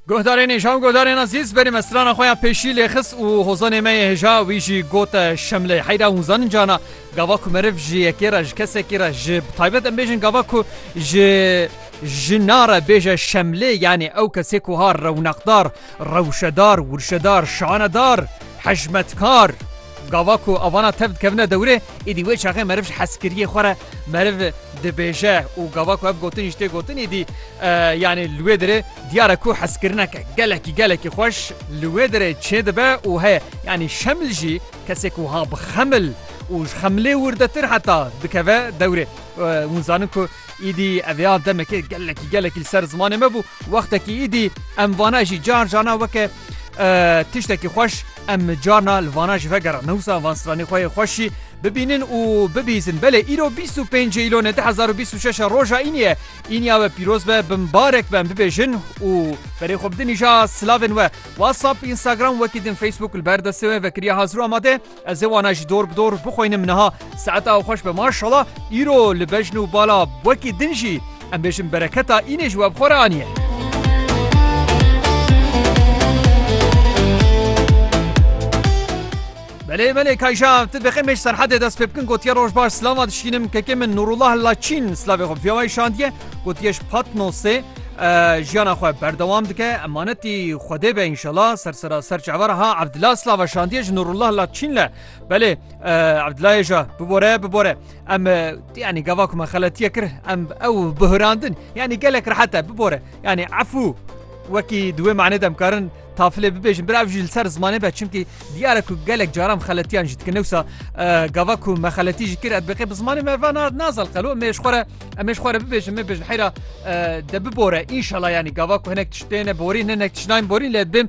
Guhdarên hêja û guhdarên ezîz berê me strana xwe ya pêşî lêxis û hozanê me yê hêja wî jî got şemlê heyra hûn zanin cana gava ku meriv ji yekê re ji kesekî re ji taybet em bêjin gava ku ji jina re bêje şemlê yanê ew kesê ku ha rewnaqdar rewşedar wurşedar şanedar hejmetkar Gava ku avana tev dikevine dewrê, êdî wê çaxê meriv ji hezkiriyê xwe re meriv dibêje û gava ku ev gotinî ji tê gotin êdî yanî li wê dirê diyar e ku hezkirineke gelekî gelekî xweş li wê dirê çêdibe û heye. Yanî şemil jî kesê ku wiha bi xemil û ji xemilê wirdetir heta dikeve dewrê. Hûn zanin ku êdî ev ya demekê gelekî gelekî li ser zimanê me bû. Wextekî êdî em vana jî car carna weke tiştekî xweş em carna li vana ji vegera newsa van stranê xwe yê xweşî bibînin û bibîzin belê îro 25 îlonê 2026 roja îniye îniya we pîroz be bin barek ben bibêjin û berê xwe bidin îja silavên we WhatsApp Instagram wekî din Facebook li ber destê we vekiriya hazir amade Ez ê wana jî dor bi dor bixwînim niha saet a xweş be maşala îro li bejn û bala wekî din jî em bêjin bereketa înê ji we bi xwe re aniye. Belê belê kayja tu bixêmêj serhedê dest pê bikin gotiye roj baş silama dişkînim kekê min Nurullah Laçîn silavê xwe viyawayê şandiye gotiye ji Patnosê jiyana xwe berdewam dike emanetî Xwedê be înşela sersera ser çavar ha Evdila slava şandiye ji Nurullah la Çînle belê Evdilayê ja bibore bibore em yanî gava ku me xeletiye kir em ew bihirandin yanî gelek rehete bibore yanî efû wekî di wê manê demkarin Tafilê bibêjin bira ev jî li ser zimanê be çimkî diyare ku gelek caran xeletiyan jî dikin newsa gava ku me xeletî jî kir edbeqê bi zimanê me va nazal qelo mêş xwe re em mêş xwe re bibêjin me bêjin heyra de bibore înşala yanî gava ku hinek tiştêne borîn hinek tişnayên borîn lê bim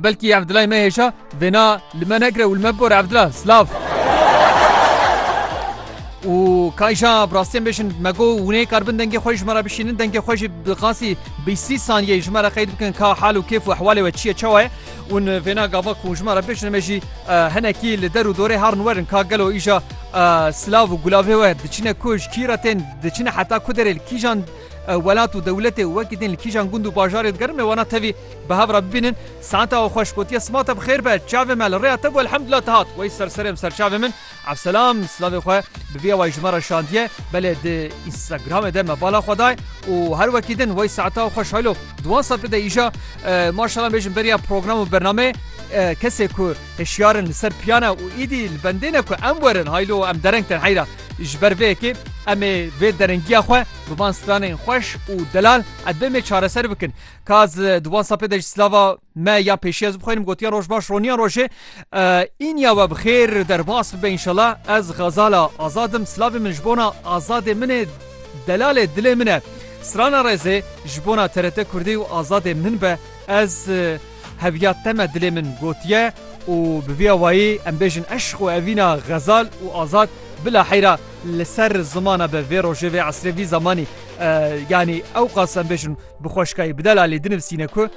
belkî ev dilay me hêja vêna li me negire û li me bibore ev dila slav. û kayja bi rastiyên bêjin me got wûnê karbin dengê xwe ji me re bişînin dengê xwe jî bi qasî Bîst sî saniyeyê ji me re qeyd bikin ka hal û kêf û ehwalê we çi ye çawa ye ûn vêna gava ku ji me re bêjin me jî hinekî li der û dorê herin werin ka gelo îja silav û gulavê we diçine ku ji kî re tên diçine heta ku derê li kîjan welat û dewletê û wekî tên li kîjan gund û bajarê digerin mêwana tevî bi hev re bibînin saeta we xweş gotiye sima te bi xêr be çavê me li rêya te bû elhemdulillah dihat wey serserê em ser çavê min Evselam silavê xwe bi vî awayî ji me re şandiye, belê di Instagramê de me bala xwe daye û her wekî din wey saeta xwe şaylo duwan saetê de îja maşala bêjin beriya program û bernameyê kesê ku hişyar in li ser piyan e û îdî li bendê ne ku em werin haylo em dereng tên heyra ji ber vê yekê em ê vê derengiya xwe bi van stranên xweş û delal edbê me çareser bikin ka di wan sapê de ji silava Me ya pêşî ez bixwînim gotiya roj baş roniya rojê îniya we bi xêr derbas bibe înşela ez xezala azadim silavê min ji bona azadê min e delalê dilê min e strana rêzê ji bona TRT Kurdî û azadê min be ez heviya te me dilê min gotiye û bi vî awayî em bêjin eşq û evîna xezal û azad bila heyra li ser zimana be vê rojê vê esrê vî zemanî yanî ewqas em bêjin bi xweşkayî bi delalê dinivisîne ku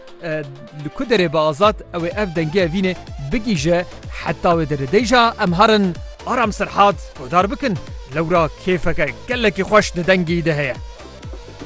Li ku derê be azad ew ê ev dengê evînê bigihîje heta wê derê dey jî em herin Aram Serhad guhdar bikin. Lewra kêfeke gelekî xweş di dengî de heye.